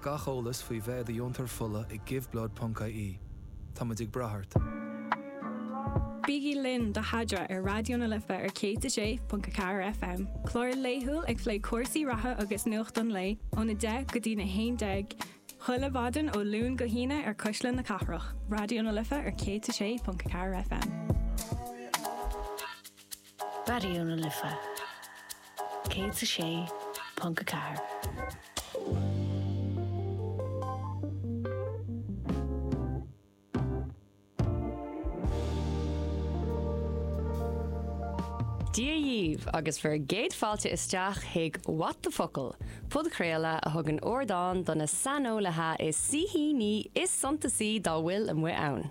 Gach eolas faoi bheith i do dheontóir fola ag Giveblood ponc IE. Táimid ag brath ort. Bígí linn do Adhmhaidin ar Raidió na Life ar 106.4 FM, clár laethúil ag plé cúrsaí reatha agus nuacht an lae ón 10:00 go dtí'n 11:00 chuile mhaidin ó Luan go hAoine ar Cuisle na Cathrach, Raidió na Life ar 106.4 FM. Raidió na Life 106.4. Dia dhaoibh agus bhur gcéad fáilte isteach chuig What the Focal, podchraoladh a thugann ardán do na saineolaithe is na saoithíní is suntasaí dá bhfuil amuigh ann.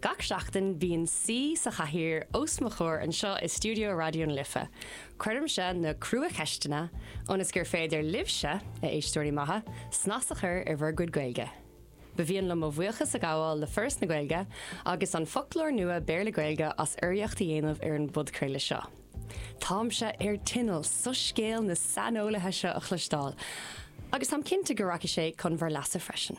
Gach seachtain bíonn saoi sa chathaoir os mo chomhair anseo i stiúideo Raidió na Life. Cuirimse na crua-cheisteanna ionas gur féidir libhse, a éisteoirí maithe, snas a chur ar bhur gcuid Gaeilge. Ba mhian liom mo bhuíochas a ghabháil le Foras na Gaeilge agus an foclóir nua Béarla-Gaeilge as urraíocht a dhéanamh ar an bpodchraoladh seo. Táimse ar tinneall soiscéal na saineolaithe seo a chloisteáil agus táim cinnte go rachaidh sé chun bhur leasa freisin.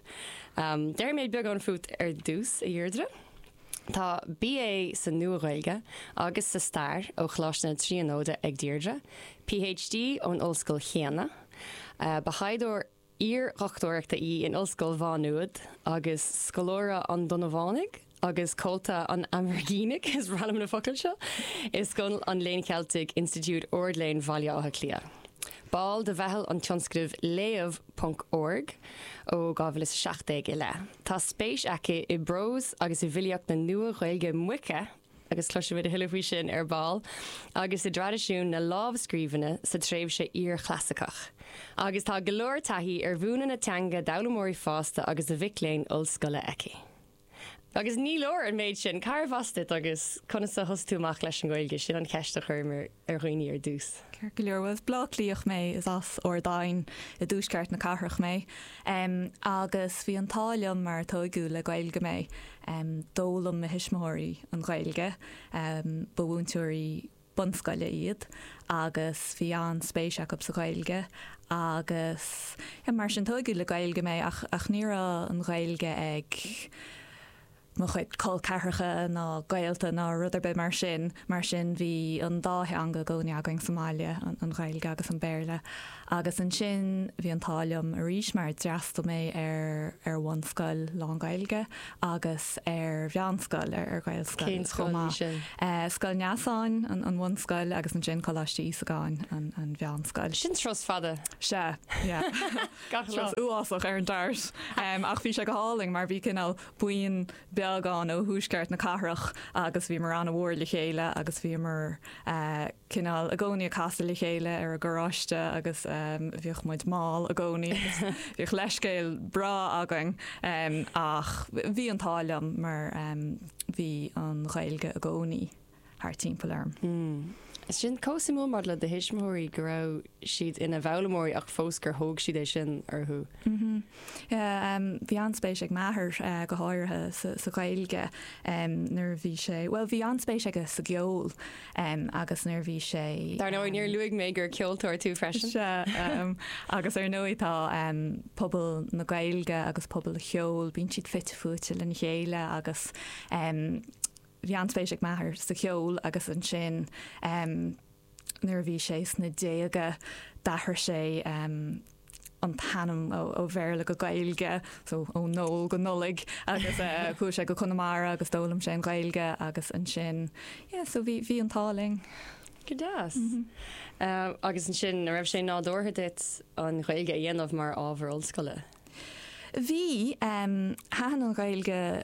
Déarfaidh mé beagán fút ar dtús, a Dheirdre. Tá BA sa Nua-Ghaeilge agus sa Stair ó Choláiste na Tríonóide ag Deirdre, PhD ón ollscoil chéanna. Ba thaighdeoir iar-dhochtúireachta í in Ollscoil Mhá Nuad agus scoláire an Donnabhánaigh agus Comhalta an Aimhirgínigh, is breá liom na focail seo, i Scoil an Léinn Cheiltigh, Institiúid Ard-Léinn Bhaile Átha Cliath. Ball de mheitheal an tionscnaimh Léamh ponc org ó 2017 i leith. Tá spéis aici i bprós agus i bhfilíocht na Nua-Ghaeilge Moiche, agus cloisfimid a thuilleadh faoi sin ar ball, agus i dtraidisiún na lámhscríbhinne sa tréimhse iar-chlasaiceach. Agus tá go leor taithí ar mhúineadh na teanga d'fhoghlaimeoirí fásta agus do mhic léinn ollscoile aici. Agus ní leor an méid sin, cárbh as duit agus conas a thosaigh tú amach leis an nGaeilge, sin an cheist a chuirim ar dhaoine ar dtús. Ceart go leor, bhuel as Bleá Cliath mé, is as Ard Aidhin i dtuaisceart na cathrach mé agus bhí an t-ádh liom mar tóigeadh le Gaeilge mé. D'fhoghlaim mo thuismitheoirí an Ghaeilge, ba mhúinteoirí, bunscoile iad agus bhí an-spéis acu sa Ghaeilge agus mar sin tóigeadh le Gaeilge mé ach ach ní raibh an Ghaeilge ag mo chuid col ceathracha ná gaolta ná rud ar bith mar sin, mar sin bhí an dá theanga i gcónaí againn sa mbaile, an Ghaeilge agus an Béarla. Agus ansin bhí an t-ádh liom arís mar d'fhreastal mé ar ar bhunscoil lán Gaeilge agus ar mheánscoil, ar ar Ghaelscoil chomh maith. Scoil Neasáin an bhunscoil agus ansin Coláiste Íosagáin an mheánscoil. Sin turas fada. Sea, yeah. Turas uafásach ar an DART. Ach bhí sé go hálainn mar bhí cineál buíon beag dínn ó thuaisceart na cathrach agus bhíomar an-mhór le chéile agus bhíomar cineál i gcónaí ag casadh le chéile ar an gcarráiste agus bhíodh muid mall i gcónaí. Bhíodh leithscéal breá againn ach bhí an t-ádh liom mar bhí an Ghaeilge i gcónaí. thart timpeall orm. Sin chomh suimiúil maidir le do thuismitheoirí go raibh siad ina bhfoghlaimeoirí ach fós gur thóg siad é sin orthu. Bhí an-spéis ag m'athair go háirithe sa Ghaeilge nuair a bhí sé, bhuel bhí an-spéis aige sa gceol agus nuair a bhí sé, Dar ndóigh, níor luaigh mé gur ceoltóir tú freisin. Sea, agus ar ndóigh tá pobal na Gaeilge agus pobal an cheoil, bíonn siad fite fuaite lena chéile agus Bhí an-spéis ag m'athair sa cheol agus ansin nuair a bhí sé sna déaga d'athraigh sé an t-ainm ó Bhéarla go Gaeilge, so ó Noel go Nollaig agus chuaigh sé go Conamara agus d'fhoghlaim sé an Ghaeilge agus ansin yeah so bhí bhí an t-ádh linn. Go deas. Agus ansin a raibh sé nádúrtha duit an Ghaeilge a dhéanamh mar ábhar ollscoile? Bhí, thaitin an Ghaeilge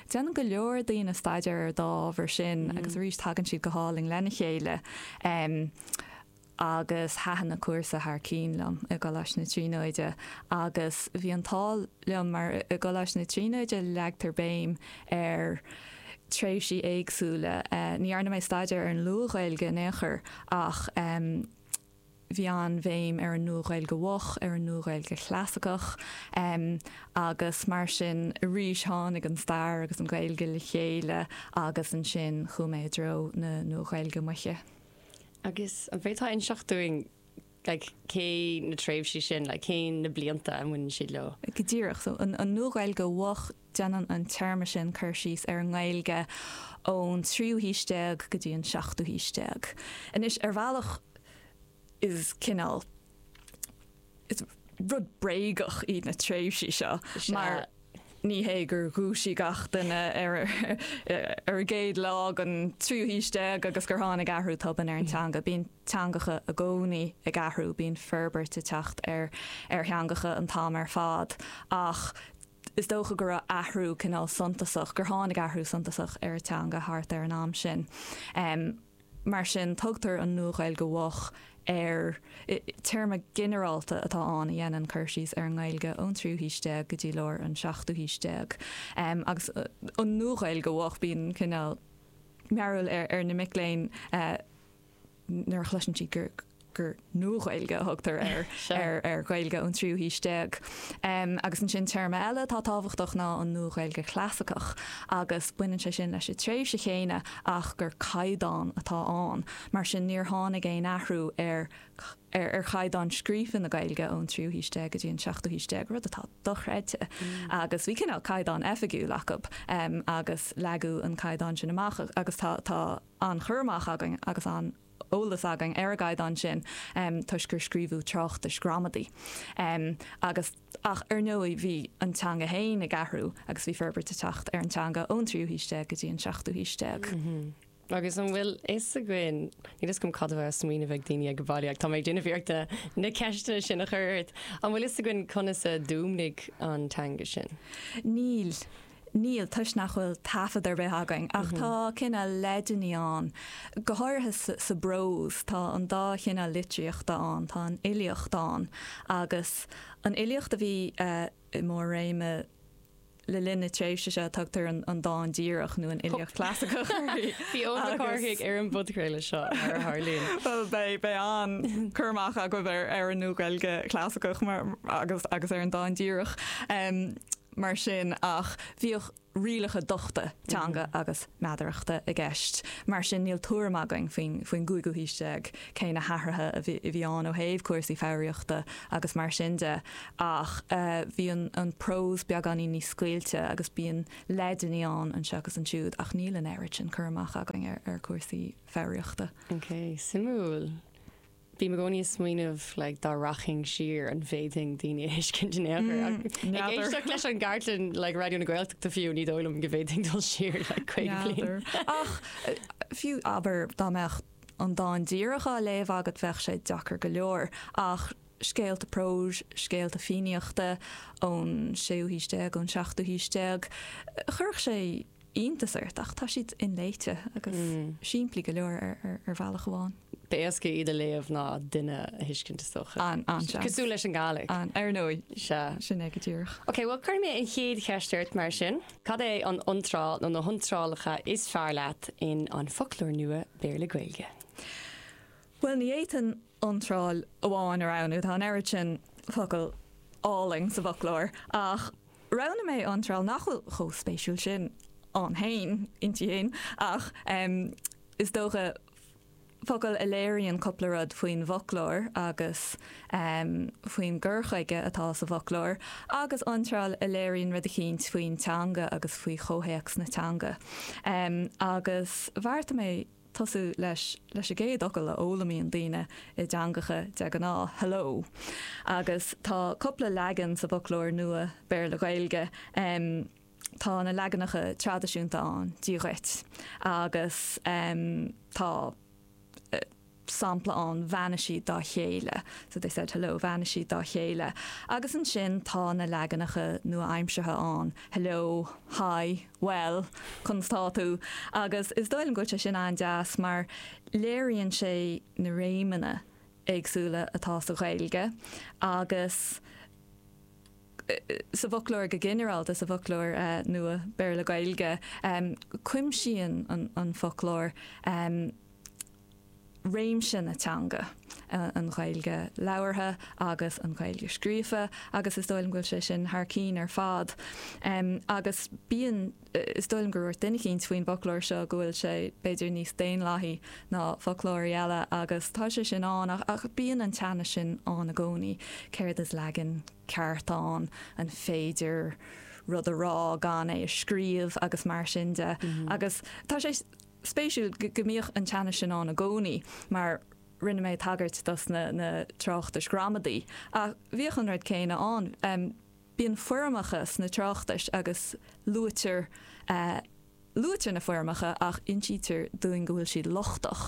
Déanann go leor daoine staidéar ar dá ábhar sin agus arís tagann siad go hálainn lena chéile agus thaitin an cúrsa thar cinn liom i gColáiste na Tríonóide agus bhí an t-ádh liom mar i gColáiste na Tríonóide leagtar béim ar tréimhsí éagsúla. Ní dhearna mé staidéar ar an Luath-Ghaeilge in aon chor ach bhí an-bhéim ar an Nua-Ghaeilge Mhoch, ar an Nua-Ghaeilge Chlasaiceach, agus mar sin, arís tháinig an Stair agus an Ghaeilge le chéile agus ansin chuaigh mé i dtreo na Nua-Ghaeilge Moiche. Agus an bhféadfá inseacht dúinn like cé na tréimhsí sin, like cén na blianta a mbaineann siad leo? Go díreach, so an Nua-Ghaeilge Mhoch, Déanann an téarma sin cur síos ar an nGaeilge ón tríú haois déag go dtí an seachtú haois déag. Anois, ar bhealach is cineál, is rud bréagach iad na tréimhsí seo mar ní hé gur dhúisigh gach duine ar an gcéad lá den tríú haois déag agus gur tháinig athrú tobann ar an teanga. Bíonn teangacha i gcónaí ag athrú, bíonn forbairt ag teacht ar theangacha an t-am ar fad ach is dócha go raibh athrú cineál suntasach, gur tháinig athrú suntasach ar an teanga thart ar an am sin. Mar sin, tugtar an Nua-Ghaeilge Mhoch ar. Téarma ginearálta atá ann a dhéanann cur síos ar an nGaeilge ón tríú haois déag go dtí lár an seachtú haois déag. Agus an Nua-Ghaeilge Mhoch, bíonn cineál mearbhaill ar na mic léinn. nuair a chloiseann siad gur gur Nua-Ghaeilge a thugtar ar ar ar Ghaeilge ón tríú haois déag. Agus ansin téarma eile atá tábhachtach ná an Nua-Ghaeilge Chlasaiceach agus baineann sé sin leis an tréimhse chéanna ach gur caighdeán atá ann. Mar sin níor tháinig aon athrú ar ar ar chaighdeán scríofa na Gaeilge ón tríú haois déag go dtí an seachtú haois déag, rud atá dochreidte. Agus bhí cineál caighdeán oifigiúil acu agus leagadh an caighdeán sin amach agus tá tá an cur amach againn agus an t-eolas againn ar an gcaighdeán sin toisc gur scríobhadh tráchtais ghramadaí agus. Ach ar ndóigh bhí an teanga féin ag athrú agus bhí forbairt ag teacht ar an teanga ón tríú haois déag go dtí an seachtú haois déag. Agus an bhfuil fhios againn, níl fhios agam cad a bheadh á smaoineamh ag daoine ag baile ach tá mé ag déanamh iarracht na ceisteanna sin a chur ort. An bhfuil fhios againn conas a d'fhuaimnigh an teanga sin? Níl. Níl, toisc nach bhfuil taifead ar bith againn, ach tá cineál leideanna ann, go háirithe sa bprós, tá an dá chineál litríochta ann, tá an fhilíocht ann agus an fhilíocht a bhí i mór-réim le linn na tréimhse seo tugtar an dán díreach nó an fhilíocht chlasaiceach uirthi. Bhí Eoin Mac Cárthaigh ar an bpodchraoladh seo mar a tharlaíonn. Bhuel beidh, beidh an cur amach agaibh ar an Nua-Ghaeilge Chlasaiceach agus ar an dán díreach. mar sin ach bhíodh rialacha dochta teanga agus meadarachta i gceist. Mar sin níl tuairim againn faoin gcúigiú haois déag cé na hathruithe a bhí ann ó thaobh cúrsaí foghraíochta agus mar sin de ach bhí an prós beagáinín níos scaoilte agus bíonn leideanna ann anseo agus ansiúd ach níl an oiread sin cur amach againn ar chúrsaí foghraíochta. Ok, suimiúil. Bím i gcónaí ag smaoineamh like dá rachainn siar an bhféadfainn daoine a thuiscint in aon chor N'fheadar. Ach ag éisteacht leis an gcartlann like Raidió na Gaeltachta fiú ní dóigh liom go bhféadfainn dul siar like 50 bliain. N'fheadar. Ach fiú abair dá mbeadh an dán díreach á léamh agat bheadh sé deacair go leor ach scéalta próis, scéalta Fiannaíochta ón séú haois déag, ón seachtú haois déag chuirfeadh sé iontas ort ach tá siad inléite agus simplí go leor ar bhealach amháin. Ba éasca iad a léamh ná duine a thuiscint is dócha. An an seans. Cosúil leis an Gaelic. An ar ndóigh. Sea. Sin é go díreach. Ok, bhuel cuirfidh mé an chéad cheist ort mar sin. Cad é an iontráil nó na hiontrálacha is fearr leat in An Foclóir Nua Béarla-Gaeilge? Bhuel, ní fhéadfainn iontráil amháin a roghnú. Tá an oiread sin focal álainn sa bhfoclóir, ach roghnaigh mé iontráil nach bhfuil chomh spéisiúil sin ann féin, inti féin, ach is dócha, focal a léiríonn cupla rud faoin bhfoclóir agus faoin gcur chuige atá sa bhfoclóir, agus iontráil a léiríonn rud eicínt faoin teanga agus faoi chomhthéacs na teanga. Agus bheartaigh mé. tosú leis leis an gcéad fhocal a fhoghlaimíonn daoine i dteangacha de ghnáth, hello. Agus tá cupla leagan sa bhfoclóir nua Béarla-Gaeilge. Tá na leaganacha traidisiúnta ann, Dia dhuit. Agus tá sampla ann, Bheannaigh siad dá chéile, so they said hello, Bheannaigh siad dá chéile. Agus ansin tá na leaganacha nua-aimseartha ann, hello, hi. Bhuel, conas tá tú? Agus is dóigh liom go bhfuil sé sin an-deas mar léiríonn sé na réimeanna éagsúla atá sa Ghaeilge agus sa bhfoclóir go ginearálta, sa bhfoclóir nua Béarla-Gaeilge. Cuimsíonn an foclóir réimse na teanga, an Ghaeilge labhartha agus an Ghaeilge scríofa agus is dóigh liom go bhfuil sé sin thar cinn ar fad. Agus bíonn, is dóigh liom gur dhúirt duine eicínt faoin bhfoclóir seo go bhfuil sé b'fhéidir níos daonlathaí ná foclóirí eile agus tá sé sin ann ach bíonn an teannas sin ann i gcónaí, céard is leagan ceart ann, an féidir rud a rá gan é a scríobh agus mar sin de. Agus tá sé. spéisiúil go mbíodh an teannas sin ann i gcónaí mar rinne mé tagairt dos na tráchtais ghramadaí ach bhíodh an rud céanna ann. Bíonn foirmeacha sna tráchtais agus luaitear, luaitear na foirmeacha ach insítear dúinn go bhfuil siad lochtach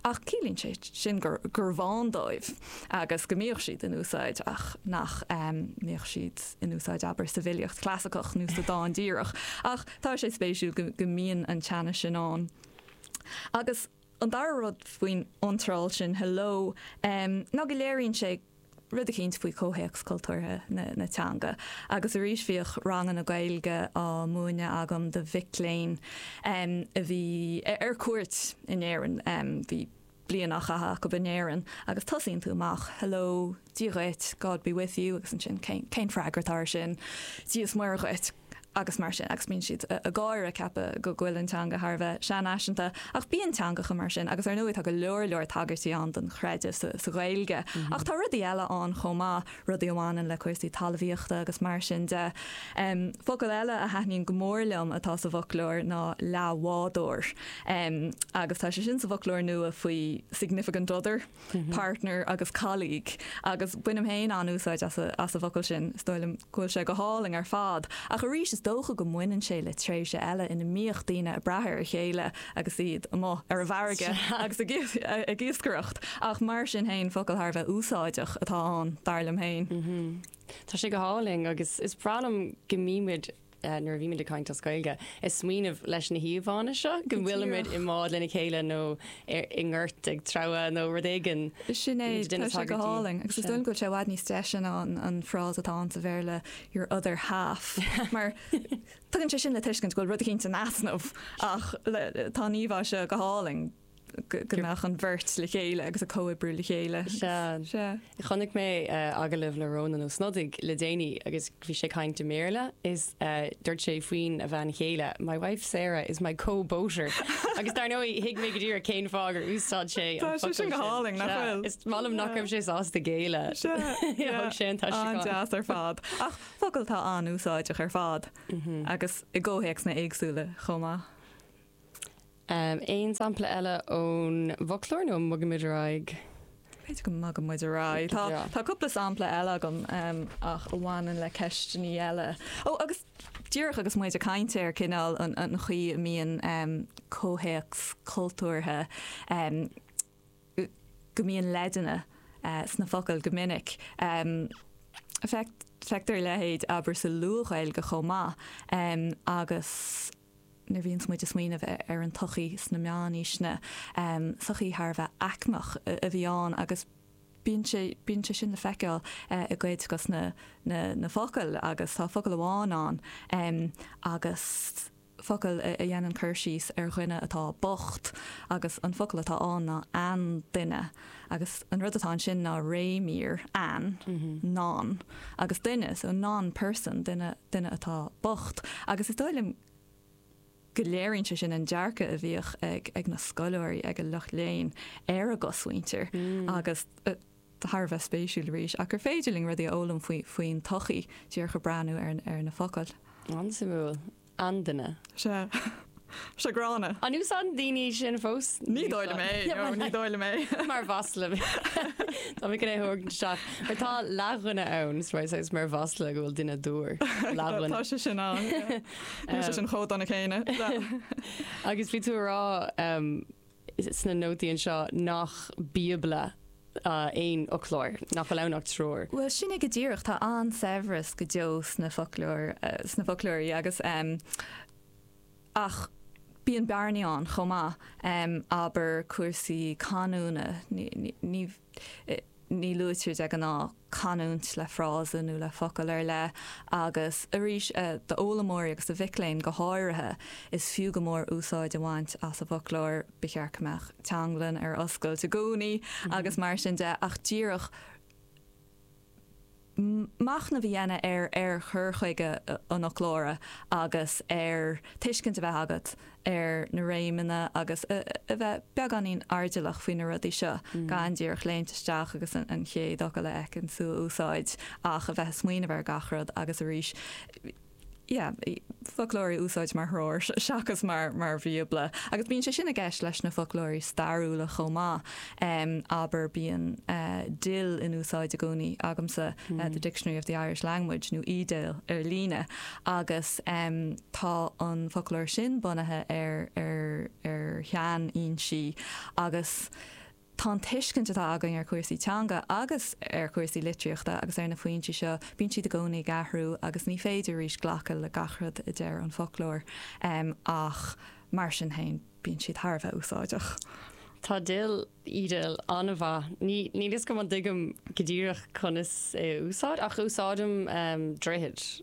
ach ciallaíonn sé sin gurbh ann dóibh agus go mbíodh siad in úsáid ach nach mbíodh siad in úsáid abair sa bhfilíocht chlasaiceach nó sa dán díreach ach Tá sé spéisiúil go mbíonn an teannas sin ann. Agus an dara rud faoin iontráil sin hello ná go léiríonn sé rud eicínt faoi chomhthéacs cultúrtha na teanga. Agus arís bhíodh ranganna Gaeilge á múineadh agam do mhic léinn a bhí ar cuairt in Éirinn. Bhí. bliain á caitheamh acu in Éirinn agus tosaíonn tú amach, hello, Dia dhuit, God be with you, agus ansin cén freagra atá ar sin? Dia is Muire dhuit, agus mar sin agus bíonn siad ag gáire ag ceapadh go bhfuil an teanga thar a bheith seanfhaiseanta ach bíonn teangacha mar sin agus ar ndóigh tá go leor leor tagairtí ann don chreideamh sa Ghaeilge ach tá rudaí eile ann chomh maith, rudaí a bhaineann le cúrsaí talmhaíochta agus mar sin de. Focal eile a thaitníonn go mór liom atá sa bhfoclóir ná leathbhádóir agus tá sé sin sa bhfoclóir nua faoi significant other, partner agus colleague agus bainim féin an-úsáid as an bhfocal sin, is dóigh liom go bhfuil sé go hálainn ar fad. Ach arís, is dócha go mbaineann sé le tréimhse eile ina mbíodh daoine ag brath ar a chéile. agus iad amuigh ar a bhfarraige agus ag iascaireacht, ach mar sin féin, focal thar a bheith úsáideach atá ann, dar liom féin. Tá sé go hálainn agus is breá liom go mbímid, nuair a bhímid ag caint as Gaeilge, ag smaoineamh leis na híomhánna seo, go bhfuilimid i mbád lena chéile nó i ngort ag treabhadh nó rud éigin. Sin é, tá sé go hálainn agus is dóigh liom go bhfuil sé i bhfad níos deise ná an frása atá ann sa Bhéarla, your other half, mar Tugann sé sin le tuiscint go bhfuil rud éicint in easnamh ach tá an íomhá seo go hálainn go mbeadh an bheirt le chéile agus ag comhoibriú le chéile. Sea. Chonaic mé agallamh le Rónán Ó Snodaigh le déanaí agus bhí sé ag caint i mBéarla is dúirt sé faoina bhean chéile My wife Sarah is my co-boater agus dar ndóigh thuig mé go díreach cén fáth gur úsáid sé an focal sin. Tá sé sin go hálainn, nach bhfuil? Is maith liom nach raibh sé sásta géilleadh. Sea. Thug sé an t-aistriúchán. An-deas ar fad. Ach. focal atá an-úsáideach ar fad agus i gcomhthéacsanna éagsúla chomh maith. Aon sampla eile ón bhfoclóir nó an mbogfaidh muid ar aghaidh? B'fhéidir go mbogfaidh muid ar aghaidh. Tá cúpla sampla eile agam ach a bhaineann le ceisteannaí eile. Ó, agus díreach agus muid ag caint ar cineál an chaoi a mbíonn comhthéacs cultúrtha, go mbíonn leideanna sna focail go minic. Feictear a leithéid, abair, sa Luath-Ghaeilge chomh maith agus nuair a bhíonns muid ag smaoineamh ar an tsochaí sna meánaoiseanna, sochaí thar a bheith aicmeach a bhí ann agus bíonn sé, bíonn sé sin le feiceáil i gcuid dos na, na focail agus tá focal amháin ann agus. focal a dhéanann cur síos ar dhuine atá bocht agus an focal atá ann ná an-duine agus an rud atá ansin ná réimír, an, non, agus duine, so non-person, duine, duine atá bocht. Agus is dóigh liom go léiríonn sé sin an dearcadh a bhíodh ag, ag na scoláirí, ag an lucht léinn ar an gcosmhuintir agus, thar a bheith spéisiúil arís, ach gur féidir linn rudaí a fhoghlaim faoin tsochaí díreach ach breathnú ar na focail. An-suimiúil. An-duine. Sea. Sea gránna. An úsáideann daoine é sin fós? Ní dóigh liom é, nó ní dóigh liom é. Mar mhasla. Tá mé cun é thabhairt isteach. Mar tá leathdhuine ann, so I say is mar mhasla go bhfuil duine dúr. Leathdhuine. Tá sé sin ann. Tá sé sin chomh dona céanna. Agus bhí tú a rá. sna nótaí anseo nach Bíobla aon fhoclóir, nach bhfuil ann ach treoir. Bhuel, sin é go díreach, tá an-saibhreas go deo sna foclóirí agus. ach bíonn bearnaí ann chomh maith, abair cúrsaí canúna, ní. Ní luaitear de ghnáth canúint le frása nó le focal ar leith agus arís, d'fhoghlaimeoirí agus do mhic léinn go háirithe, is fiú go mór úsáid a bhaint as an bhfoclóir. Ba cheart go mbeadh Teanglann ar oscailt i gcónaí agus mar sin de ach díreach, machnamh a dhéanamh ar chur chuige an fhoclóra agus ar tuiscint a bheith agat ar na réimeanna agus a bheith beagáinín airdeallach faoi na rudaí seo, gan díreach léimt isteach agus an chéad fhocal a fheiceann tú a úsáid ach a bheith ag smaoineamh ar gach rud agus arís, yeah foclóir a úsáid mar threoir seachas mar mar bhíobla agus bíonn sé sin i gceist leis na foclóirí stairiúla chomh maith um, abair bíonn uh, DIL in úsáid i gcónaí agamsa mm. uh, the hmm. Dictionary of the Irish Language nó eDIL ar líne agus um, tá an foclóir sin bunaithe ar ar ar tSean ansin agus a Tá an tuiscint atá againn ar chúrsaí teanga agus ar chúrsaí litríochta agus ar na foinsí seo, bíonn siad i gcónaí ag athrú agus ní féidir arís glacadh le gach rud a deir an foclóir, ach mar sin féin bíonn siad thar a bheith úsáideach. Tá DIL eDIL an-mhaith. Níl fhios agam an dtuigim go díreach conas é a úsáid ach úsáidim droichead.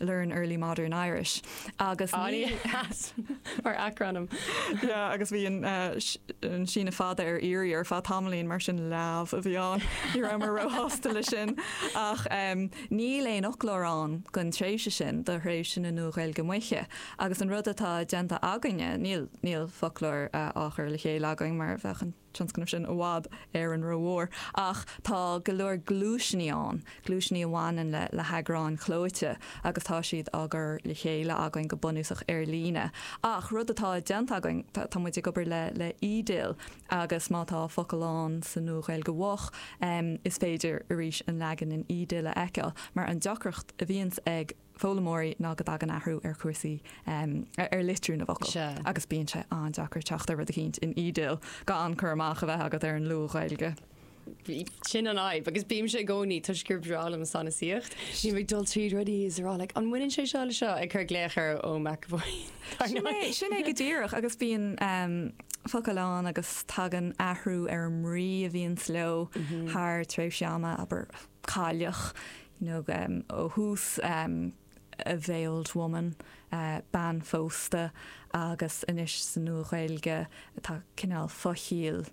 Léamh Early Modern Irish agus ní. Aye, that! Mar acronym. Yeah, agus bhí an síneadh fada ar iarraidh ar feadh tamaillín, mar sin leamh a bhí ann. Ní rabhamar róshásta leis sin. Ach níl aon fhoclóir ann don tréimhse sin do thréimhse na Nua-Ghaeilge Moiche. Agus an rud atá déanta againne, níl foclóir á chur le chéile againn mar a bheadh an. tionscnamh sin i bhfad Éireann rómhór ach tá go leor gluaiseanna ann, gluaiseanna a bhaineann le le heagráin chlóite agus tá siad á gcur le chéile againn go bunúsach ar líne. Ach rud atá déanta againn, tá muid ag obair le le eDIL agus má tá focal ann sa Nua-Ghaeilge Mhoch, is féidir arís an leagan in eDIL a fheiceáil mar an deacracht a bhíonns ag. foghlaimeoirí ná go dtagann athrú ar chúrsaí, ar litriú na bhfocal agus bíonn sé an-deacair teacht ar rud eicínt in eDIL gan cur amach a bheith agat ar an luath-Ghaeilge. Sin an fhadhb agus bímse i gcónaí toisc gur breá liom sanasaíocht. Bím ag dul tríd rudaí is rá like an mbaineann sé seo le seo ag cur glaoch ar Eoin McEvoy. Sin é, sin é go díreach agus bíonn focail ann agus tagann athrú ar an mbrí a bhíonns leo thar tréimhse ama, abair cailleach, nó ó thús A Veiled Woman, Bean Phósta, agus anois sa Nua-Ghaeilge tá cineál fo-chiall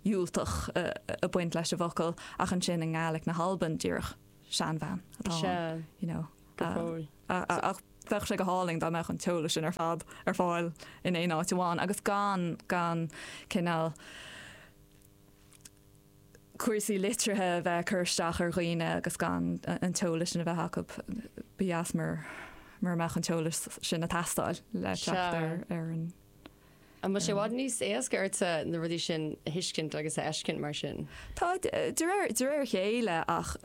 dhiúltach ag baint leis an bhfocal ach ansin i nGaelic na hAlban díreach seanbhean atá ann. Ach bheadh sé go hálainn dá mbeadh an t-eolas sin ar fad ar fáil in aon áit amháin agus gan, gan cineál. cúrsaí litrithe a bheith ag cur isteach ar dhaoine agus gan an t-eolas sin a bheith acu. Ba dheas mura mbeadh an t-eolas sin ag teastáil le teacht ar an. An bhfuil sé i bhfad níos éasca ortsa na rudaí sin a thuiscint agus a fheiscint mar sin? Tá, de réir a chéile ach.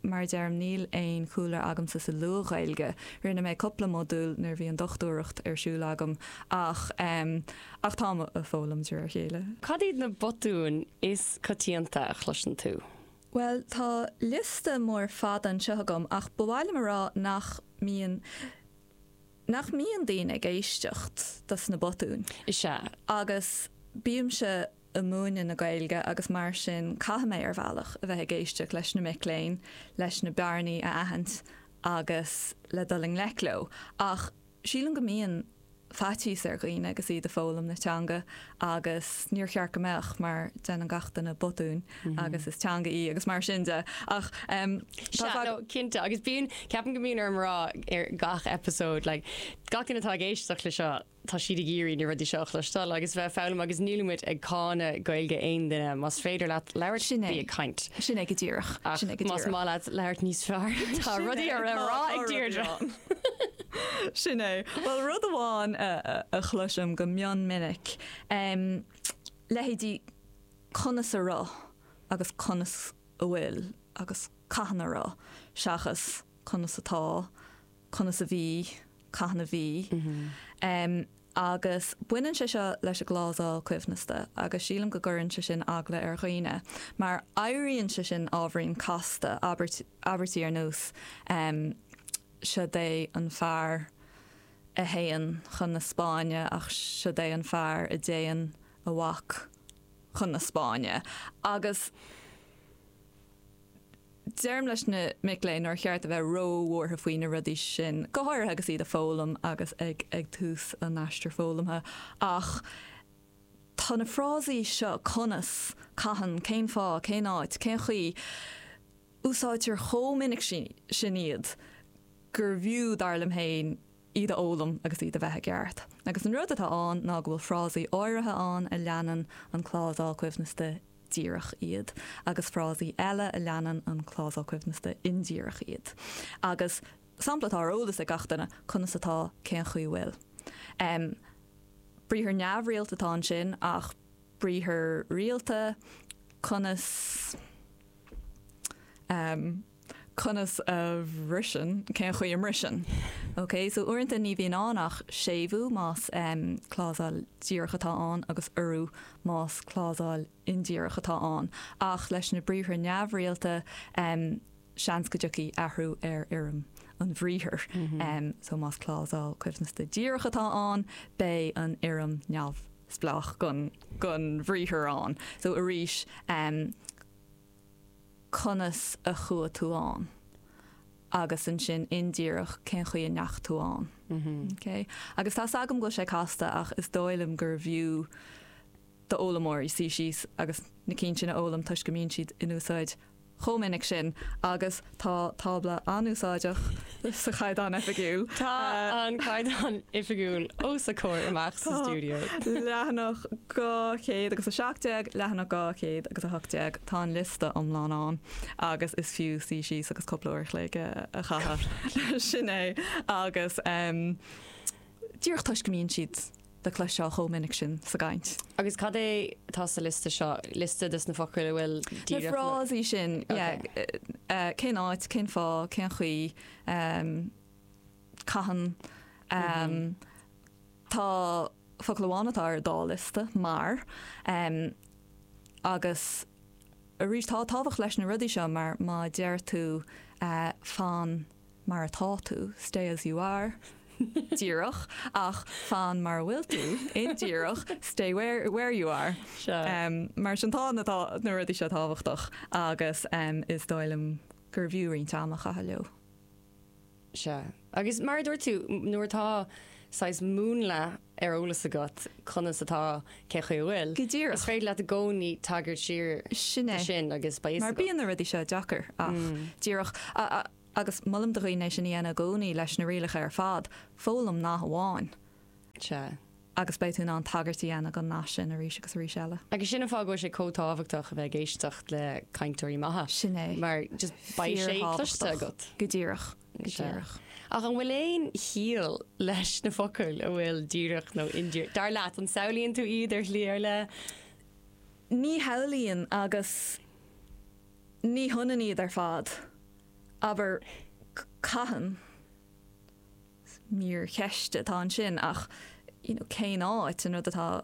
Mar a deirim, níl aon chúlra agamsa sa Luath-Ghaeilge. Rinne mé cupla modúil nuair a bhí an dochtúireacht ar siúl agam ach, em, ach táim a' foghlaim de réir a chéile. Cad iad na botúin is coitianta a chloiseann tú? Bhuel, tá liosta mór fada anseo agam ach ba mhaith liom a rá nach mbíonn, nach mbíonn daoine ag éisteacht dos na botúin. Is ea. Agus bímse. i mbun múineadh na Gaeilge agus mar sin caithfidh mé, ar bhealach, a bheith ag éisteacht leis na mic léinn leis na bearnaí a aithint agus le dul i ngleic leo. Ach sílim go mbíonn faitíos ar dhaoine agus iad ag foghlaim na teanga agus níor cheart go mbeadh mar déanann gach duine botúin agus is teanga í agus mar sin de. Ach em. Sea, no, cinnte agus bíonn, ceapaim go mbíonn orm a rá ar gach episode like gach duine atá ag éisteacht le seo, Tá siad ag iarraidh na rudaí seo a chloisteáil agus bheith ag foghlaim agus nílimid ag cáineadh Gaeilge aon duine. Más féidir leat labhairt, Sin é. bí ag caint. Sin é go díreach. Ach más maith leat labhairt níos fearr, tá rudaí le rá ag Deirdre. Sin é. Bhuel, rud amháin a, a, a chloisim go mion minic, em, leithéidí conas a raibh agus conas a bhfuil agus cathain a raibh seachas conas atá, conas a bhí. cathain a bhí. Agus baineann sé seo leis an gclásáil coibhneasta agus sílim go gcuireann sé sin eagla ar dhaoine, mar éiríonn sé sin ábhairín casta, abairtí ar nós Siod é an fear a théann chun na Spáinne ach siod é an fear a dtéann a mhac chun na Spáinne. Agus. Deirim leis na mic léinn nár cheart a bheith ró-bhuartha faoi na rudaí sin, go háirithe agus iad ag foghlaim agus ag tús a n-aistir foghlamtha, ach tá na frásaí seo, conas, cathain, cén fáth, cén áit, cén chaoi, úsáidtear chomh minic sin iad gurbh fhiú, dar liom féin, iad a fhoghlaim agus iad a bheith i gceart. Agus an rud atá ann ná go bhfuil frásaí áirithe ann a leanann an clásál coibhneasta díreach iad agus frásaí eile a leanann an clásal coibhneasta indíreach iad. Agus sampla atá ar eolas ag gach duine, conas atá, cén chaoi bhfuil. Briathar neamhrialta atá ansin ach briathar rialta, conas. Conas a bhriseann? Cén chaoi a mbriseann? Ok, so uaireanta ní bhíonn ann ach séimhiú más clásal díreach atá ann agus urú más clásal indíreach atá ann. Ach leis na briathra neamhrialta, seans go dtiocfaidh athrú ar fhoirm an bhriathair. So más clásal coibhneasta díreach atá ann, beidh an fhoirm neamhspleách den bhriathar ann. So arís. conas a chuaigh tú ann agus ansin indíreach cén chaoi a ndeachaigh tú ann. OK? Agus tá 's agam go bhfuil sé casta ach is dóigh liom gurbh fhiú d'fhoghlaimeoirí suí síos agus na cinn sin a fhoghlaim toisc go mbíonn siad in úsáid chomh minic sin agus Tá tábla an-úsáideach sa Chaighdeán Oifigiúil. Tá an Caighdeán Oifigiúil os a comhair amach sa stiúideo. Tá leathanach 217, leathanach 218, tá an liosta iomlán ann agus is fiú suí síos agus cúpla uair chloig a chaitheamh leis sin agus díreach toisc go mbíonn siad le cloisteáil chomh minic sin sa gcaint. Agus cad é atá sa liosta seo? Liosta de sna focail a bhfuil díreach le. Na frásaí sin, yeah. Cén áit, cén fáth, cén chaoi, cathain. Tá focal amháin atá ar an dá liosta, mar. Agus arís, tá tábhacht leis na rudaí seo mar má deir tú fan. mar atá tú, stay as you are, díreach, ach fan mar a bhfuil tú, indíreach, stay where you are. Sea. Mar sin tá na rudaí seo tábhachtach agus is dóigh liom gurbh fhiú roinnt ama a chaitheamh leo. Sea. Agus mar a dúirt tú, nuair atá saghas múnla ar eolas agat conas atá, cén chaoi a bhfuil. Go díreach. Is féidir leat i gcónaí tagairt siar Sin é. do sin agus beidh fhios Mar agat. bíonn na rudaí seo deacair. Ach. Díreach. A, a, agus molaim do dhaoine é sin a dhéanamh i gcónaí leis na rialacha ar fad. Foghlaim nath amháin. Sea. agus beidh tú in ann tagairt a dhéanamh don nath sin arís agus arís eile. Agus sin an fáth go bhfuil sé chomh tábhachtach a bheith ag éisteacht le cainteoirí maithe. Sin é. Mar just beidh sé cloiste Fíor-thábhachtach. agat. Go díreach. Go díreach. Ach an bhfuil aon chiall leis na focail an bhfuil díreach nó indíreach? Dar leat, an samhlaíonn tú iad ar shlí ar leith? Ní shamhlaíonn agus ní hionann iad ar fad. Abair, caitheann. Mír cheiste atá ansin ach you know cén áit, an rud atá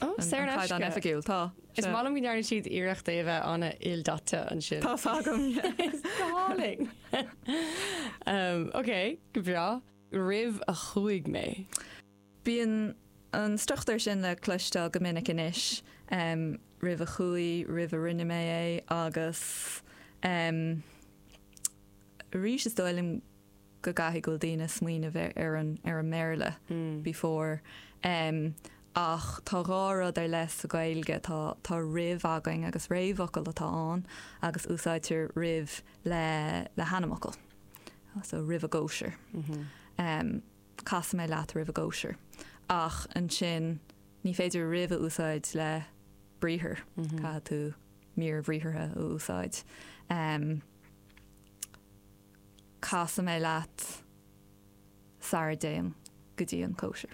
Ó, saor in aisce. An caighdeán oifigiúil, tá. Is maith liom go ndearna siad iarracht é a bheith ana-ildaite ansin. Tá a fhios agam. It's galling! Ok, go breá. Roimh a chuaigh mé. Bíonn an struchtúr sin le cloisteáil go minic anois, roimh a chuaigh, roimh a rinne mé é agus arís is dóigh liom go gcaithfidh go bhfuil daoine ag smaoineamh ar an mBéarla before Ach tá dhá rud ar leith sa Ghaeilge, tá tá roimh againn agus réamhfhocal atá ann agus úsáidtear roimh le le hainmfhocal. So roimh an gcóisir. Em casfaidh mé leat roimh an gcóisir. Ach ansin ní féidir roimh a úsáid le briathar. Caithfidh tú mír bhriathartha a úsáid. Em. casfaidh mé leat sara dtéim go dtí an chóisir.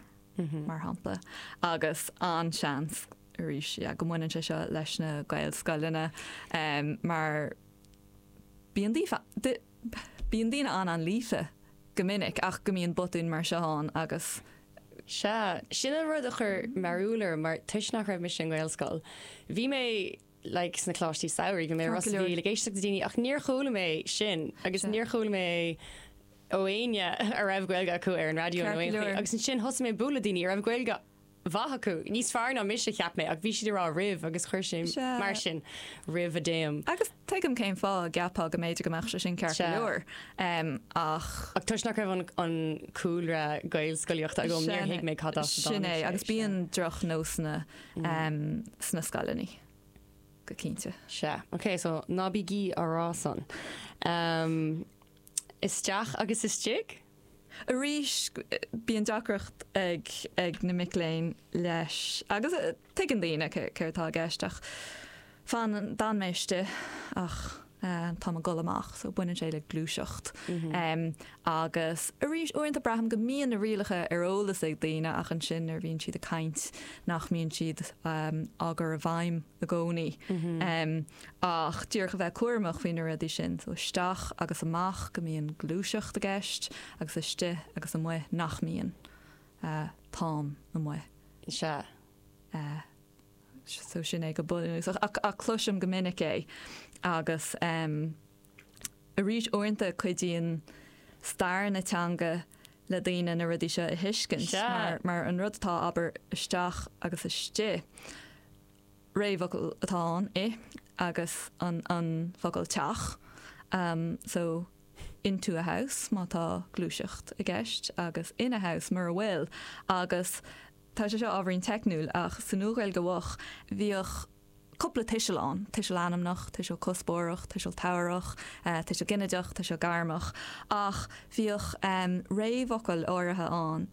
mar shampla. Agus an-seans arís yeah go mbaineann sé seo leis na Gaelscoileanna em mar bíonn daofa di- bíonn daoine an- an-líofa go minic ach go mbíonn botúin mar seo ann agus Sea, sin an rud a chuir mearbhall orm mar toisc nach raibh mise i nGaelscoil, bhí mé, like sna coláistí samhraidh bhí mé i Ros a' Mhíl ag éisteacht le daoine ach níor chuala mé sin agus níor chuala mé ó éinne a raibh Gaeilge acu ar an raidió nó aon chaoi agus ansin thosaigh mé ag bualadh le daoine a raibh Gaeilge mhaith acu, níos fearr ná mise cheap mé ach bhí siad ag rá roimh agus chuir sé mar sin roimh a dtéim. Agus tuigim cén fáth a gceapfá go mb'fhéidir go mbeadh sé sin ceart go leor ach. Ach toisc nach raibh an cúlra Gaelscolaíochta agam níor thuig mé cad as a dtáinig sé. Sin é agus bíonn drochnósanna sna scoileanna go cinnte. Sea, ok, so ná bígí á rá san. Isteach agus istigh? Arís, bíonn deacracht ag na mic léinn leis agus tuigeann daoine céard atá i gceist ach. fanann, d'fhan mé istigh ach tá mé ag dul amach so baineann sé le gluaiseacht em agus arís uaireanta braithim go mbíonn na rialacha ar eolas ag daoine ach ansin nuair a bhíonn siad ag caint nach mbíonn siad em á gcur i bhfeidhm i gcónaí em ach díreach a bheith cúramach faoi na rudaí sin so isteach agus amach go mbíonn gluaiseacht i gceist agus istigh agus amuigh nach mbíonn eh táim amuigh. Sea. Eh. So sin é go bunúsach cloisim go minic é agus arís uaireanta cuidíonn stair na teanga le daoine na rudaí seo a thuiscint mar an rud atá abair isteach agus istigh, réamhfhocal atá ann, i, agus an focal teach, so into a house má tá gluaiseacht i gceist agus in a house mura bhfuil agus. Tá sé seo ábhairín teicniúil ach sa Nua-Ghaeilge Mhoch bhíodh cúpla tuiseal ann, tuiseal ainmneach, tuiseal cuspóireach, tuiseal tabharthach, tuiseal ginideach, tuiseal gairmeach, ach bhíodh réamhfhocail áirithe ann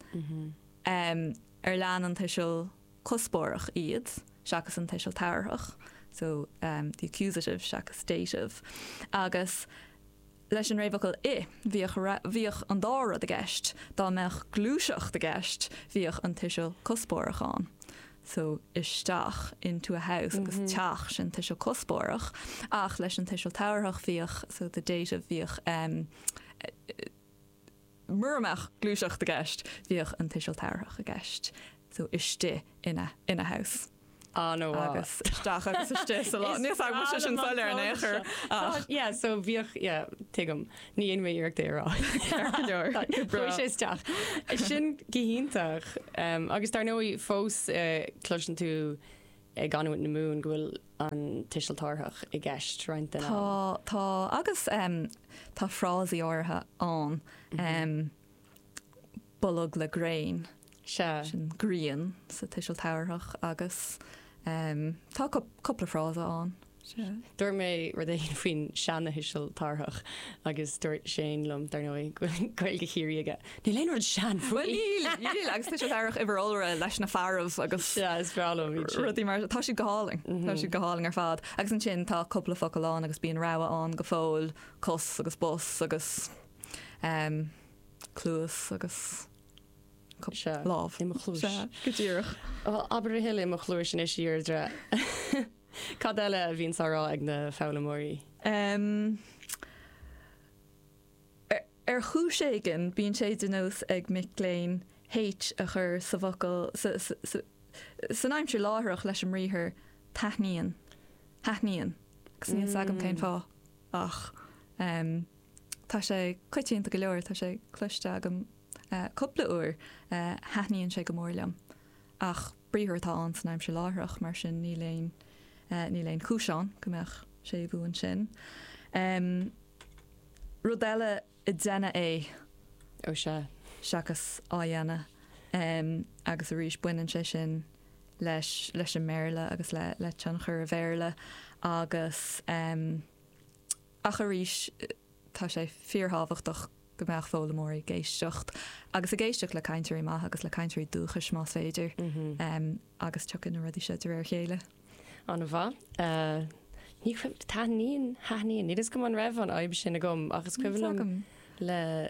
ar lean an tuiseal cuspóireach iad seachas an tuiseal tabharthach, so the accusative seachas dative, agus Leis an réamhfhocal 'i', bhíodh, bhíodh an dá rud i gceist, dá mbeadh gluaiseacht i gceist, bhíodh an tuiseal cuspóireach ann. So, isteach, into a house, agus teach, sin tuiseal cuspóireach, ach leis an tuiseal tabharthach bhíodh, so the dative, bhíodh, Mura mbeadh gluaiseacht i gceist bhíodh an tuiseal tabharthach i gceist, so istigh in a, in a house. Ah no ah. Agus isteach agus istigh sa lá atá. inniu ann níl sé sin soiléir in aon chor ach. Yeah so bhíodh, yeah tuigim. Ní dhéanfaidh mé iarracht é a rá. Ar go leor. Go bráth. Chuaigh sé isteach. Sin go hiontach. Agus dar ndóigh fós cloiseann tú i gcanúint na Mumhan go bhfuil an tuiseal tabharthach i gceist roinnt den am. Tá, tá agus em tá frásaí áirithe ann em bolg le gréin. Sea. Sin grian sa tuiseal tabharthach agus em tá cúpla frása ann. Dúirt mé rud éigin faoin seana-thuiseal tabharthach agus dúirt Shane liom dar ndóigh go bhfuil Gaeilge Chiarraí aige. Níl aon rud sean faoi! Níl, níl agus tuiseal tabharthach uimhir iolra leis na fearaibh agus Yeah, is breá liom iad sin. rudaí mar tá siad go hálainn Tá siad go hálainn ar fad agus ansin tá cúpla focal ann agus bíonn rogha ann go fóill cos agus bos agus em, cluas agus cup- Sea, lámh. i mo chluais. Sea, go díreach Well, abair thuile i mo chluais in is iardre. Cad eile a bhíonns á rá ag na foghlaimeoirí? Ahem. Ar chúis éigin, bíonn sé de nós ag mic léinn H a chur sa bhfocal, sa, sa, sa, san aimsir láithreach leis an mbriathar taithníonn, thaithníonn, agus níl 's agam cén fáth, ach ehm, tá sé coitianta go leor, tá sé cloiste agam cúpla uair, eh, thaithníonn sé go mór liom, ach. Briathar atá ann san aimsir láithreach, mar sin níl aon níl aon chúis ann go mbeadh séimhiú ansin. Rud eile ag déanamh é ó sea seachas á dhéanamh agus arís baineann sé sin leis leis an mBéarla agus le le tionchar a' Bhéarla agus ach arís, Tá sé fíorthábhachtach go mbeadh foghlaimeoirí ag éisteacht, agus ag éisteacht le cainteoirí maithe agus le cainteoirí dúchais más féidir, agus tiocfaidh na rudaí seo de réir a chéile. An-mhaith. Ní raibh, taithníonn, thaithníonn, ní fios agam an raibh an fhadhb sin agam ach is cuimhin liom le,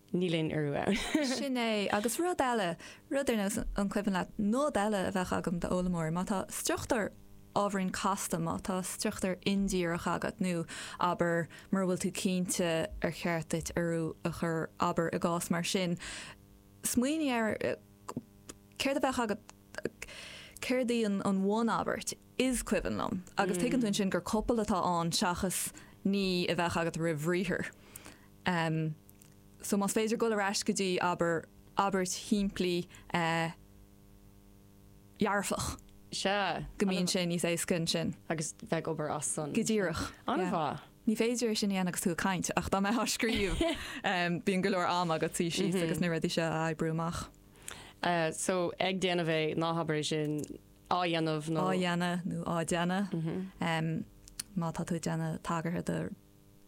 Níl aon urú ann. Sin é, agus rud eile, rud ar nós an cuimhin leat nod eile a bheadh agam d'fhoghlaimeoirí, má tá struchtúr ábhairín casta, má tá struchtúr indíreach agat nó, abair, mura bhfuil tú cinnte ar cheart duit urú a chur, abair, i gcás mar sin, smaoinigh ar céard a bheadh agat, céard í an bhunabairt, is cuimhin liom, agus tuigeann tú ansin gur copail atá ann seachas ní a bheadh agat roimh bhriathar. so más féidir dul ar ais go dtí, abair, abairt shimplí dhearfach. Sea. Go mbíonn sé níos éasca ansin. Agus bheith ag obair as san. Go díreach. An-mhaith. Ní féidir é sin a dhéanamh agus tú ag caint ach dá mbeith á scríobh bíonn go leor am agat suí síos agus na rudaí seo a oibriú amach. So ag déanamh é ná habair é sin á dhéanamh nó. Á dhéanamh nó á déanamh. Má tá tú ag déanamh tagartha do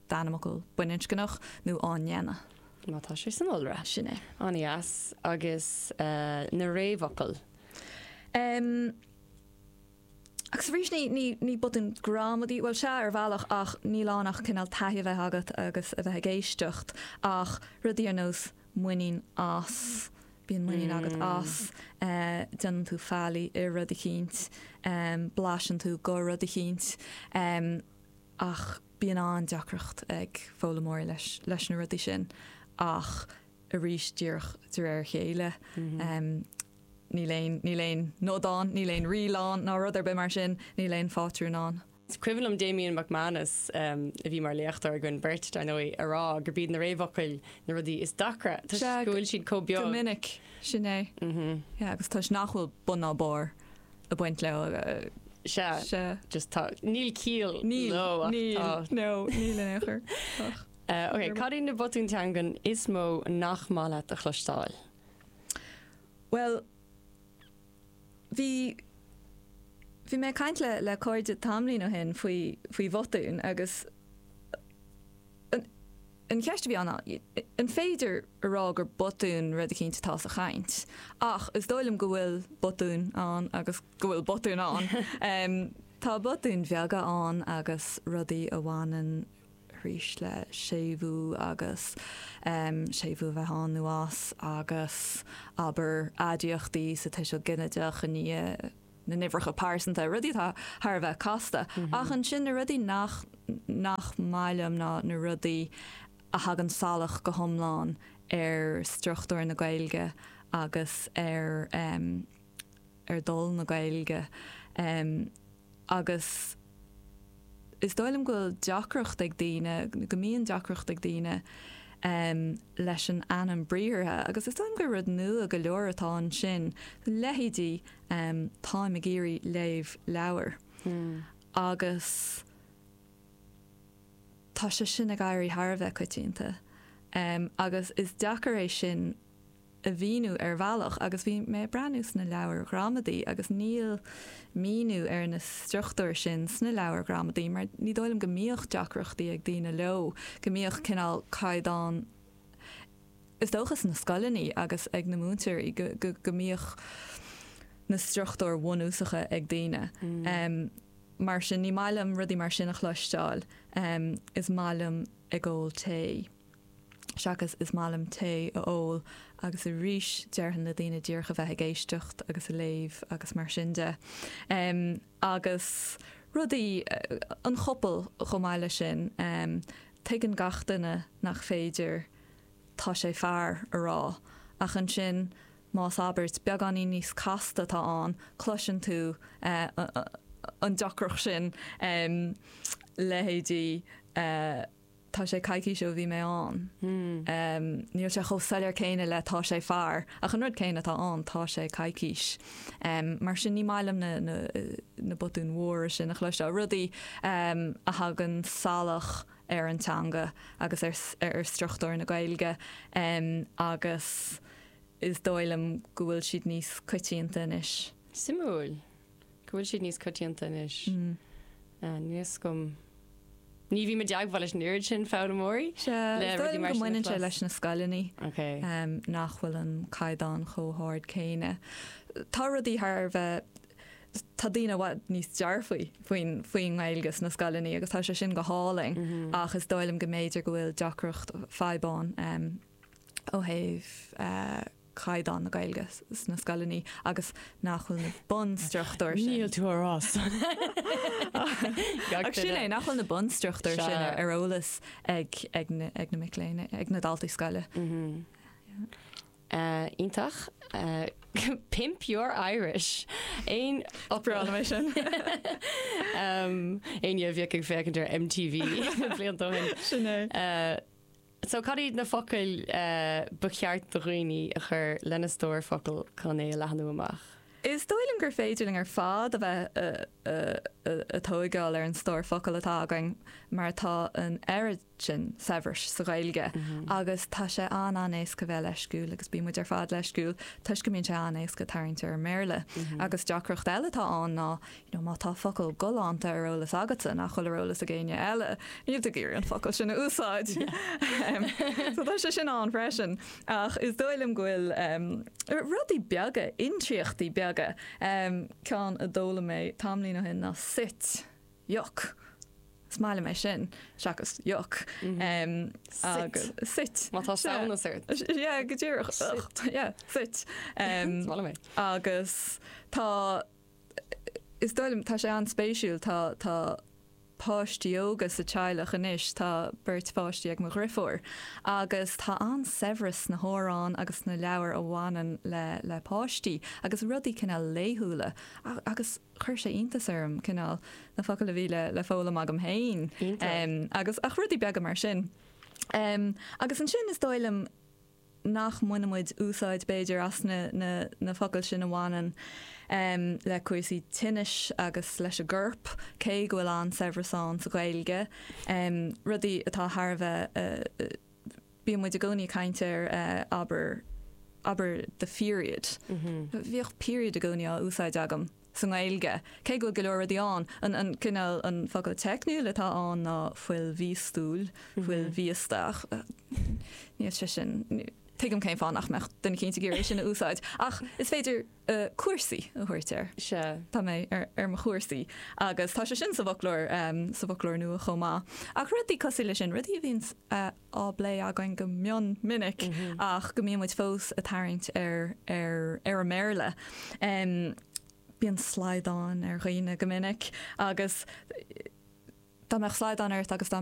d'ainmfhocal baininscneach nó á ndéanamh. má tá sé san iolra. Sin é. An-dheas. Agus na réamhfhocail? Em. agus arís ní, ní, ní botún gramadaí, bhuel sea ar bhealach ach níl ann ach cineál taithí a bheith agat agus a bheith ag éisteacht ach rudaí ar nós muinín as, bíonn muinín agat as, eh déanann tú faillí i rud eicínt, em blaiseann tú de rud eicínt, em. ach bíonn an-deacracht ag foghlaimeoirí leis leis na rudaí sin ach arís díreach de réir a chéile em níl aon níl aon nod ann níl aon riail ann ná rud ar bith mar sin níl aon phátrún ann. Is cuimhin liom Damian McManus em a bhí mar léachtóir againn beirt dar ndóigh a rá gurb iad na réamhfhocail na rudaí is deacra toisc go bhfuil siad chomh beag. Go minic, sin é. Yeah agus toisc nach bhfuil bun ná barr. a bhaint leo Sea, sea. just tá, níl ciall Níl, leo ach níl, tá. no, níl in aon chor. Ach, Eh, ok, cad iad na botúin teangan is mó nach maith leat a chloisteáil? bhuel, bhí, bhí mé ag caint le, le cairde tamaillín ó shin faoi, faoi bhotúin agus, eh, an, An cheist a bhí ann ná, an féidir a rá gur botún rud eicínt atá sa chaint? Ach is dóigh liom go bhfuil botúin ann agus go bhfuil botúin ann. Tá botúin bheaga ann agus rudaí a bhaineann arís le séimhiú agus séimhiú a bheith ann nó as agus, abair, aidiachtaí sa tuiseal ginideach i ndiaidh. na n-uimhreacha pearsanta, rudaí atá thar a bheith casta, ach ansin na rudaí nach nach maith liom ná na rudaí a thagann salach go hiomlán ar struchtúr na Gaeilge agus ar em ar dhul na Gaeilge em agus is dóigh liom go bhfuil deacracht ag daoine, go mbíonn deacracht ag daoine em leis an ainm briathartha agus is dóigh liom gur rud nua go leor atá ansin, leithéidí em táim ag iarraidh léamh leabhar agus tá sé sin ag éirí thar a bheith coitianta em agus is deacair é sin a mhíniú ar bhealach agus bhí mé ag breathnú sna leabhair ghramadaí agus níl míniú ar na struchtúir sin sna leabhair ghramadaí mar ní dóigh liom go mbíodh deacrachtaí ag daoine leo go mbíodh cineál caighdeán Is dócha sna scoileanna agus ag na múinteoirí go mbíodh na struchtúir bhunúsacha ag daoine. Mar sin ní maith liom rudaí mar sin a chloisteáil. Is maith liom ag ól tae. Seachas is maith liom tae a ól agus arís déarfainn le daoine díreach a bheith ag éisteacht agus ag léamh agus mar sin de. Agus rudaí, an chopail chomh maith leis sin. Tuigeann gach duine nach féidir. tá sé fear a rá, ach ansin más abairt beagáinín níos casta atá ann, cloiseann tú an deacracht sin, leithéidí Tá sé coicís ó bhí mé ann. Níl sé chomh soiléir céanna le tá sé fear, ach an rud céanna atá ann, tá sé coicís. Mar sin ní maith liom na botúin mhóra sin a chloisteáil, rudaí a thagann salach. ar an teanga agus ar struchtúr na Gaeilge agus is dóigh liom go bhfuil siad níos coitianta anois. Suimiúil go bhfuil siad níos coitianta anois. Níos go. Ní bhím i dteagmháil leis an oiread sin foghlaimeoirí le rudaí mar sin a chlos. Is dóigh liom go mbaineann sé leis na scoileanna nach bhfuil an caighdeán chomh hard céanna. Tá rudaí thar a bheith Tá daoine i bhfad níos dearfaí faoin faoin nGaeilge sna scoileanna agus tá sé sin go hálainn ach is dóigh liom go mb'fhéidir go bhfuil deacracht fadhb ann ó thaobh caighdeán na Gaeilge sna scoileanna agus nach bhfuil na bunstruchtúir sin. sin é, nach bhfuil na bunstruchtúir sin ar eolas ag na mic léinn, ag na daltaí scoile. Ah, iontach. Pimp your Irish. Éinne a bhíodh ag féachaint ar MTV blianta ó shin. So cad iad na focail ba cheart do dhaoine a chur lena stór focal chun é a leathnú amach? Is dóigh liom gur féidir linn ar fad a bheith ag tógáil ar an stór focal atá againn mar atá an oiread sin saibhris sa Ghaeilge agus tá sé an-an-éasca bheith leisciúil agus bíonn muid ar fad leisciúil toisc go mbíonn sé an-éasca tarraingt ar an mBéarla. Agus deacracht eile atá ann ná, you know, má tá focal galánta ar eolas agatsa nach bhfuil ar eolas ag éinne eile, níl tú ag iarraidh an focal sin a úsáid. Em, so tá sé sin ann freisin. Ach is dóigh liom go bhfuil, em, rudaí beaga, intriachtaí beaga, em, ceann a d'fhoghlaim mé tamlín ó shin ná 'soit' Yuck. Is maith liom é sin. Seachas yuck. Soit. Soit. Má tá samhnas ort. Yeah, go díreach. Soit. Yeah, soit. Is maith liom é. Agus tá, is dóigh liom, tá sé an-spéisiúil. Tá, tá páistí óga sa teaghlach anois. Tá beirt pháistí ag mo dheirfiúr. Agus tá an-saibhreas sna hamhráin agus sna leabhair a bhaineann le, le páistí. Agus rudaí cineál laethúla. A, agus. chuir sé iontas orm cineál na focail a bhí le le foghlaim agam féin. agus ach rudaí beaga mar sin. Agus ansin is dóigh liom nach mbainimid úsáid b'fhéidir as na na na focail sin a bhaineann le cúrsaí tinnis agus leis an gcorp, cé go bhfuil an-saibhreas ann sa Ghaeilge, rudaí atá thar a bheith Bíonn muid i gcónaí ag caint ar abair, abair the period. Bhíodh period i gcónaí á úsáid agam sa nGaeilge, cé go bhfuil go leor rudaí ann. An, an cineál, an focal teicniúil atá ann ná fuil mhíostúil, fuil mhíosta. Níl sé sin, tuigim cén fáth nach mbeadh duine cinnte ag iarraidh é sin a úsáid ach is féidir cúrsaí a thabhairt air. Tá mé ar mo chúrsaí agus tá sé sin sa bhfoclóir, sa bhfoclóir nua chomh maith. Ach rudaí cosúil leis sin, rudaí a bhíonn á bplé againn go mion minic ach go mbíonn muid fós a' tarraingt ar, ar, ar an mBéarla. Bíonn slaghdán ar dhaoine go minic agus dá mbeadh slaghdán ort agus dá.